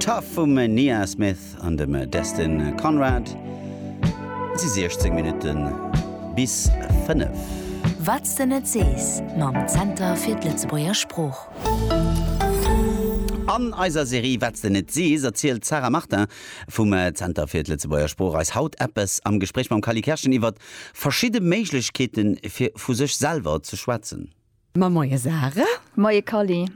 Tough vum Nia Smith an dem Destin Conrad. Et si 16 Minutte bis 5. Wat s de net sees mam Zenter fir d'Lëtzebuerger Sprooch. An eiser Serie Wat s de net sees erzielt d'Sarah Martin vum Zenter fir d'Lëtzebuerger Sprooch eis haut eppes am Gespréich mam Kali Kerschen iwwer verschidde Méiglechkeete fir vu sech selwer ze schwätzen. Ma moie Sarah. Moie Kally.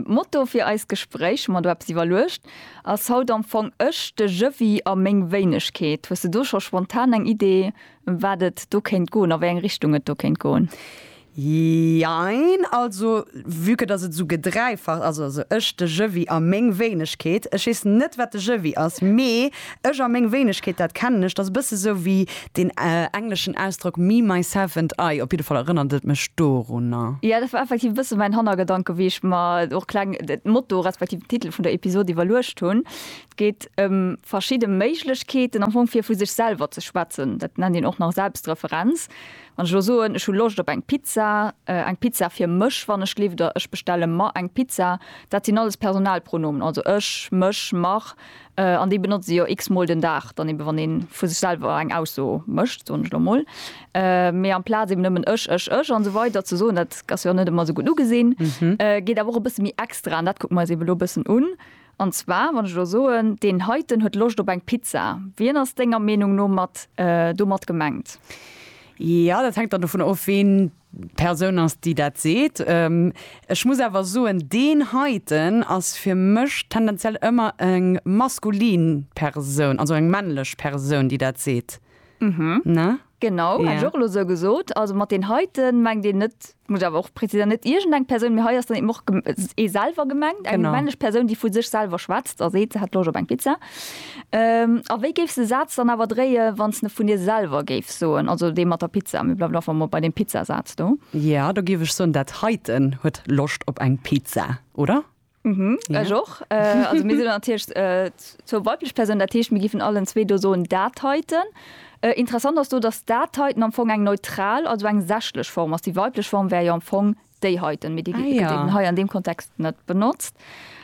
Motto fir eist Gespréich, hu mer do eppes iwwerluecht, ass haut am Fong Ech, de Jëwwi a meng Wéinegkeet. Hues de do scho spontan eng Idee, ëm wat et do kéint goen, a wéi eng Richtung et do kéint goen? Jein. Also vue que dass et esou gedreifacht ass, also Ech, de Jëwwi a meng Wéinegkeet, ech weess net wat de Jëwwi ass, mee Ech a meng Wéinegkeet, dat kennen ech, dat ass e bësse sou wéi deen engleschen Ausdrock me, myself and I, op jidde Fall erënnert et mech dorunner. Jo, dat war effektiv e bësse mäin Hannergedanke wéi ech mer och kleng de Motto respektiv den Titel vun der Episod iwwerluecht hunn. Et geet ëm verschidde Méiglechkeeten am Fong fir vu sech selwer ze schwätzen. Dat nennt een och nach Selbstreferenz. Wann ech elo soen, ech hu Loscht op eng Pizza, eng Pizza fir mech wann ech lift, oder ech bestelle mer eng Pizza, dat sinn alles Personalpronomen, also ech, mech, mer. an déi benotze se jo x-mol den Dag, dann eebe wann ee vu sech selwer eng Ausso mécht, soen ech elo emol, mee amplaz eeben nëmmen ech, ech, ech an esou weider ze soen, dat ass jo och net ëmmer esou gutt ugesinn, geet awer och e bësse méi extra, an dat kucke mer eis eebe elo e bëssen un. An zwar, wann ech elo soen, deen heiten huet Loscht op eng Pizza, wien ass denger Meenung no mat domat gemengt? Jo, dat hänkt dann dovunner of, ween D'Persoun ass, déi dat seet. Ech muss awer soen, deen heiten ass fir mech tendenziell ëmmer eng maskulin Persoun, also eng männlech Persoun, déi dat seet, ne? Genau, hätt ech och elo esou gesot. Also mat deen heiten mengt een net, muss ech awer och präziséieren, net iergendeng Persoun, mee hei ass dann eben och ee selwer gemengt, eng männlech Persoun, déi vu sech selwer schwätzt a seet, se hätt Loscht op eng Pizza. A wéi géifs de Saz dann awer dréie wanns ne vun dir selwer géifs soen? Also dee mat der Pizza, mee bleiwen einfach mol bei deem Pizzasaz do. Jo, do géif ech soen, dat heiten huet Loscht op eng Pizza, oder? Mhm, ech och. Also mir sinn natierlech zwou weiblech Persounen, dat heescht mir géifen allen zwee do soen dat heiten. Interessant ass do, datt dat heiten am Fong eng neutral, also eng sächlech Form ass. Déi weiblech Form wär jo am Fong Déi heiten Medie ginn hei an deem Kontext net benotzt,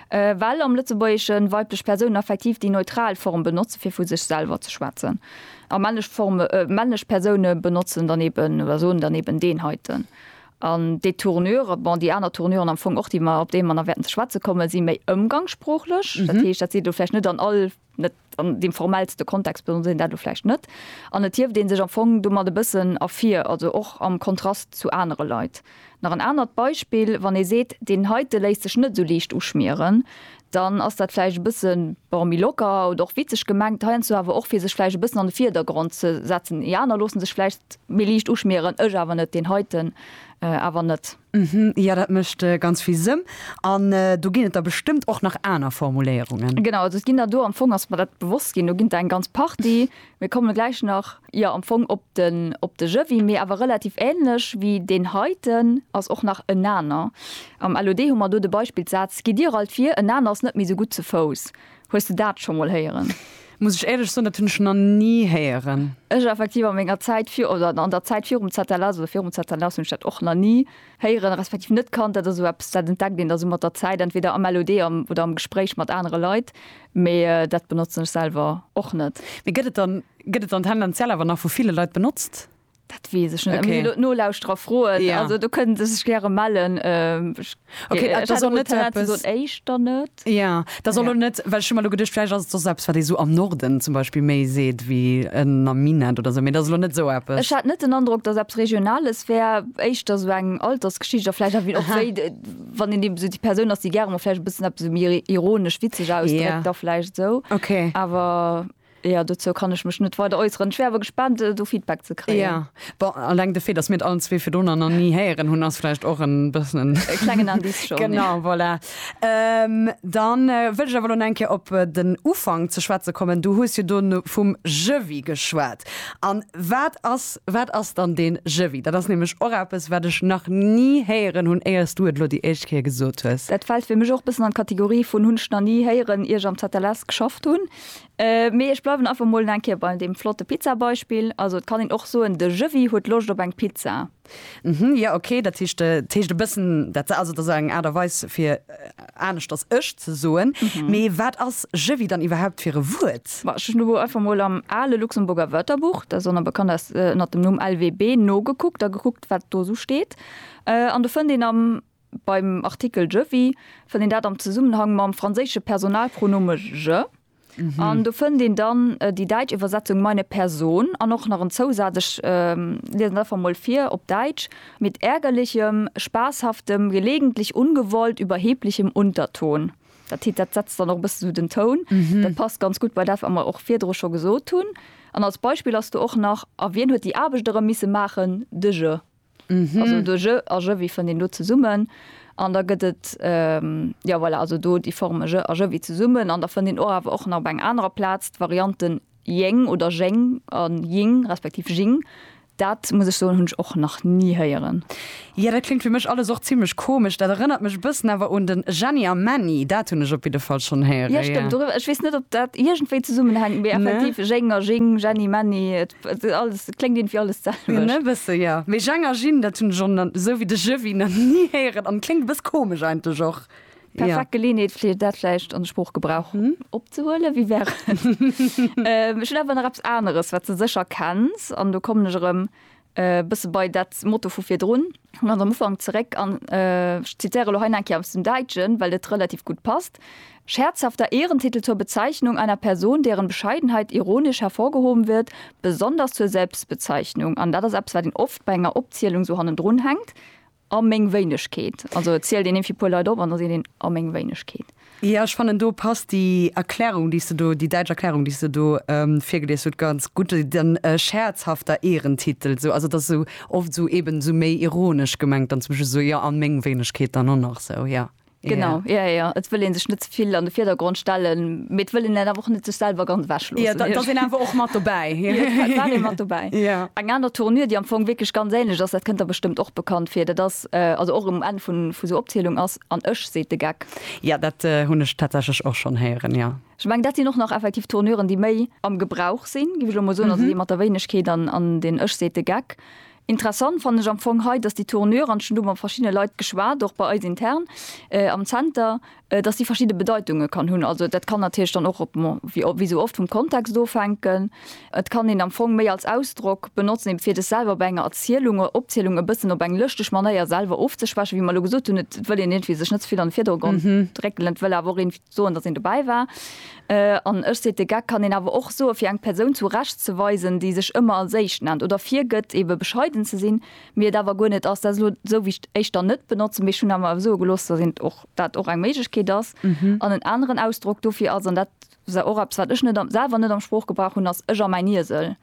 well am Lëtzebuergeschen weiblech Persounen effektiv déi neutral Form benotzen, fir vu sech selwer ze schwätzen, a männlech Formen, männlech Persounen benotzen dann eben oder soen dann eben deen heiten. An déi Tournure, bon, déi aner Tournuren am Fong och, déi mer, op déi mer nach wäerten ze schwätze kommen, si méi ëmgangssproochlech. Dat heescht, dat seet elo vläicht net an all. net an deem formellste Kontext benotzt een dat elo vläicht net, an et hieft ee sech am Fong domat e bëssen ervir, also och am Kontrast zu anere Leit. Nach en anert Beispill, Wann ee seet, deen heite léisst sech net esou liicht uschmieren, dann ass dat vläicht e bësse, bon, méi locker oder och witzeg gemengt, heiansdo awer och fir sech vläicht e bëssen an de Virdergrond ze setzen, déi aner loosse sech vläicht méi liicht uschmieren, ech awer net, deen heiten awer net. Mhm, jo, dat mécht ganz vill Sënn. An do ginn et der bestëmmt och nach aner Formuléierungen. Genau, also et ginn der do, am Fong ass mer dat bewosst ginn, do ginn der eng ganz Partie. Mir kommen gläich nach, jo, am Fong op den, op de Jëwwi, mee awer relativ änlech wéi deen heiten ass och nach en aner. Am LOD hu mer do de Beispillssaz, Gitt dir alt vir, en aner ass net méi esou gutt ze Fouss. Hues de dat scho mol héieren? Muss ech éierlech soen, dat hunn ech nach ni héieren. Ech effektiv a menger Zäit vir, oder an der Zäit virum ZLS oder virum ZLS hunn ech dat och nach ni héieren, respektiv net kannt. Dat ass esou eppes, dat entdeckt een da sou mat der Zäit, entweder am LOD am oder am Gespréich mat anere Leit, mee dat benotzen ech selwer och net. Mee gëtt et dann, gëtt et dann tendenziell awer nach vu ville Leit benotzt? Dat wees ech net. Okay. Nolauschterer froen ja. also do kënnen se sech gäre mellen ähm, okay, äh, soll net Éischter net ja da soll ja. net well schon mal du gedcht fleisch as selbst wat so am Norden zum Beispiel méi seet wie en am Minen oder so mir da net so Apple. Ech hat net den Andruck dat selbst regionales wär Eichter so eng altersgeschichter fleisch wie och wéi, wann in dem so die Person ass die gerne fleisch bis ab so mir ironisch witzeg aus ja. da fleisch so okay aber Jo, dozou kann ech mech net weider äusseren. Ech wär awer gespaant, do Feedback ze kréien. Ja, bon, alleng de Fait, dass mir et allen zwee fir dono nach ni héieren hunn, ass vläicht och e bëssen en. E klengen Indice schonn. Genau, voilà. Da wëll ech awer elo nach eng Kéier op den Ufank ze schwätze kommen. Du hues jo do vum Jevi geschwat. A wat ass, wat ass dann dee Jevi? Dat ass nämlech och eppes, wat ech nach ni héieren hunn, éier s du et elo déi éischt Kéier gesot hues. Dat fält fir mech och e bëssen an d'Kategorie vun hunn ech nach ni héieren, ier ech am ZLS geschafft hunn. Mee ech bleiwen einfach mol eng Kéier bei deem flotte Pizzabeispill. Also et kann een och soen, de Jëwwi huet Loscht op eng Pizza. Hm, jo, ok, dat heescht, dat heescht e bëssen, dat also dat ass eng Aart a Weis fir aneschters ech ze soen. Mee wat ass Jëwwi dann iwwerhaupt fir e Wuert? Bah, ech hunn elo einfach mol am ale Luxemburger Wörterbuch, dat ass och nach bekannt aus ënnert dem Numm LWB, nogekuckt a gekuckt, wat do esou steet. An do fënnt een am. Beim Artikel je vis fënnt een dat am Zesummenhang mam franséische Personalpronome je. An do fënnt een dann déi däitsch Iwwersetzung meine Person an och nach en Zousaz, ech liesen dat einfach emol vir op Däitsch, mit ärgerlichem, spaßhaftem, gelegentlich ungewollt überheblichem Unterton. Dat heet, dat setzt dann och e bësse sou den Toun. Dat passt ganz gutt bei dat, wat mer och virdru scho gesot hunn. An als Beispill ass do och nach, A wien huet déi Aarbecht erëm misse maachen? De je. Also do je a jevi fënnt een do zesummen an da gëtt et, jo voilà, also do déi Forme je a jevi zesummen an da fënnt een och awer och nach op enger anerer Plaz d'Varianten jeng oder jeng a jing respektiv jing. Dat muss ech soen, hunn ech och nach ni héieren. Jo, dat kléngt fir mech alles och zimlech komesch. Dat erënnert mech e bëssen awer un den Jenny a Männi. Dat hunn ech op jidde Fall schonn héieren, jo. Jo stëmmt, dorëwwer, ech weess net, ob dat iergendwéi zesummenhänkt, mee effektiv, jeng a jing, Jenny, Männi. Alles, et kléngt irgendwie alles d'selwecht. E bësse, jo. Mee Jang a Jin, dat hunn ech och, esou wéi de Jëwwi, nach ni héieren an kléngt e bësse komesch eigentlech och. Perfekt Geleeënheet, fir dat vläicht an de Sproochgebrauch opzehuelen. Wie wär et? Ech hunn awer nach eppes aneres, wat s de sécher kenns, an do kommen ech erëm e bësse bei dat Motto vu virdrun, ganz am Ufank, zeréck an ech zitiere lo hei nach eng Kéier aus dem Däitschen, well et relativ gutt passt, Scherzhafter Ehrentitel zur Bezeichnung einer Person, deren Bescheidenheit ironisch hervorgehoben wird, besonders zur Selbstbezeichnung, an dat ass eppes, wat een oft bei enger Opzielung sou hannendrun hänkt, a meng Wéinegkeet. Also et zielt een iergendwéi e puer Leit op an da seet een a meng Wéinegkeet. Jo, ech fannen, do passt déi Erklärung, déi s de do, déi däitsch Erklärung, déi s de do virgelies hutt, ganz gutt. Den scherzhafter Ehrentitel, esou, also et ass esou oft esou, eben esou méi ironisch gemengt dann zum Beispill esou, jo, a meng Wéinegkeet dann och nach esou, jo. Genau, ja, ja, et wëll een sech net ze vill an de Virdergrond stellen, mee et wëll een dat awer och net sech selwer ganz ewechloossen. Ja, da, da ass een awer och mat dobäi. Ja, da war een mat dobäi. Ja. Eng aner Tournure, déi am Fong wierklech ganz ähnlech ass, dat kënnt der bestëmmt och bekannt vir, dat ass, also och um Enn vun, vu sou Opzielung ass, An ech, seet de Geck. Ja, dat hunn ech tatsächlech och schonn héieren, ja. Ech mengen, dat sinn och nach effektiv Tournuren, déi méi am Gebrauch sinn, géif ech elo mol soen, also déi mat der Wéinegkeet an, an den ech, seet de Geck. Interessant fannen ech am Fong hei, dass déi Tournure, an ech hunn do mat verschiddene Leit geschwat, och bei eis intern am Zenter, dass déi verschidde Bedeitunge kann hunn. Also dat kann natierlech dann och, bon, wéi esou oft, vum Kontext ofhänken. Et kann een am Fong méi als Ausdrock benotzen, ebe fir sech selwer bei enger Erzielung oder Opzielung e bëssen op eng lëschteg Manéier selwer ofzeschwächen, wéi mer elo gesot hunn, et wëll een iergendwéi sech net ze vill an de Virdergrond drécken, et wëll awer och een, Soen, dass een dobäi war. An ech, seet de Geck, kann een awer och soen, fir eng Persoun zu Recht ze weisen, déi sech ëmmer als éischt nennt oder virgëtt, ebe bescheiden ze sinn, mee et awer guer net ass. Dat ass elo esou, wéi ech d'éischter net benotzen, mee ech hunn awer soe gelooss, dass een och dat och eng Méiglechkeet ass. An en aneren Ausdrock dofir ass, an dat ass och eppes, wat ech net am, selwer net am Sproochgebrauch hunn, ass ech a mäin Iesel.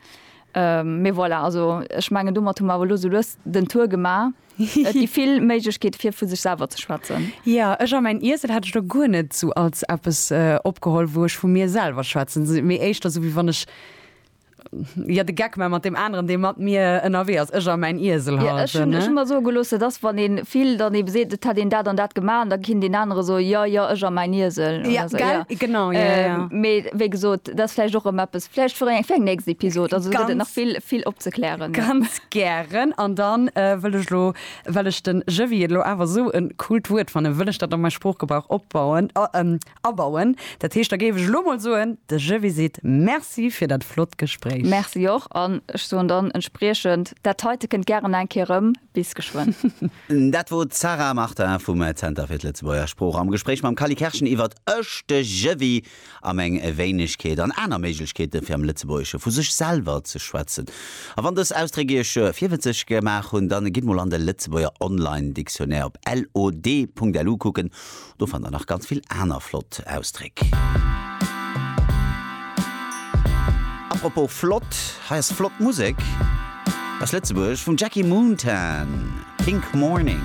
Mee voilà, also ech mengen domat hu mer awer elo esou lues den Tour gemaach. Et gi vill Méiglechkeete fir vu sech selwer ze schwätzen. Jo, ech a mäin Iesel hat ech do guer net esou als eppes opgeholl, wou ech vu mir selwer schwätzen, mee éischter esou wéi wann ech jo de Geck maache mat deem aneren, dee mat mir ënnerwee ass, ech a mäin Iesel halt, ne? Ech hunn mer soe geloossen, dass wann ee vill dann eebe seet, et hätt een dat an dat gemaach an da kinnt deen anere soen, jo, jo, ech a mäin Iesel. Jo, gell, genau, jo, jo. Mee wéi gesot, dat ass vläicht och erëm eppes vläicht fir eng nächst Episod, also do gëtt et nach vill, vill opzeklären. Ganz. Gären. An da wëll ech elo, well ech den Jevy et elo awer esou e coolt Wuert fannen, wëll ech dat a mäi Sproochgebrauch opbauen, abauen. Dat heescht, da géif ech elo mol soen, de Jevy seet Merci fir dat flott Gespréich. Merci och. An ech soen dann entspriechend dat heite kënnt gären eng Kéier erëm. Bis geschwënn. Dat wor d'Sarah Martin vum Zenter fir d'Lëtzebuerger Sprooch am Gespréich mam Kally Kerschen iwwert Ech, de Jevy. am eng Wéinegkeet an aner Méiglechkeeten, fir am Lëtzebuergesche vu sech selwer ze schwätzen. A wann dës Ausdréck iech virwëtzeg gemaach hunn, dann gitt mol an de Lëtzebuerger Online Dictionnaire op lod.lu kucken, do fannt der nach ganz vill aner flott Ausdréck. A propos flott, hei ass flott Musek aus Lëtzebuerg vum Jackie Moontan, Pink Morning.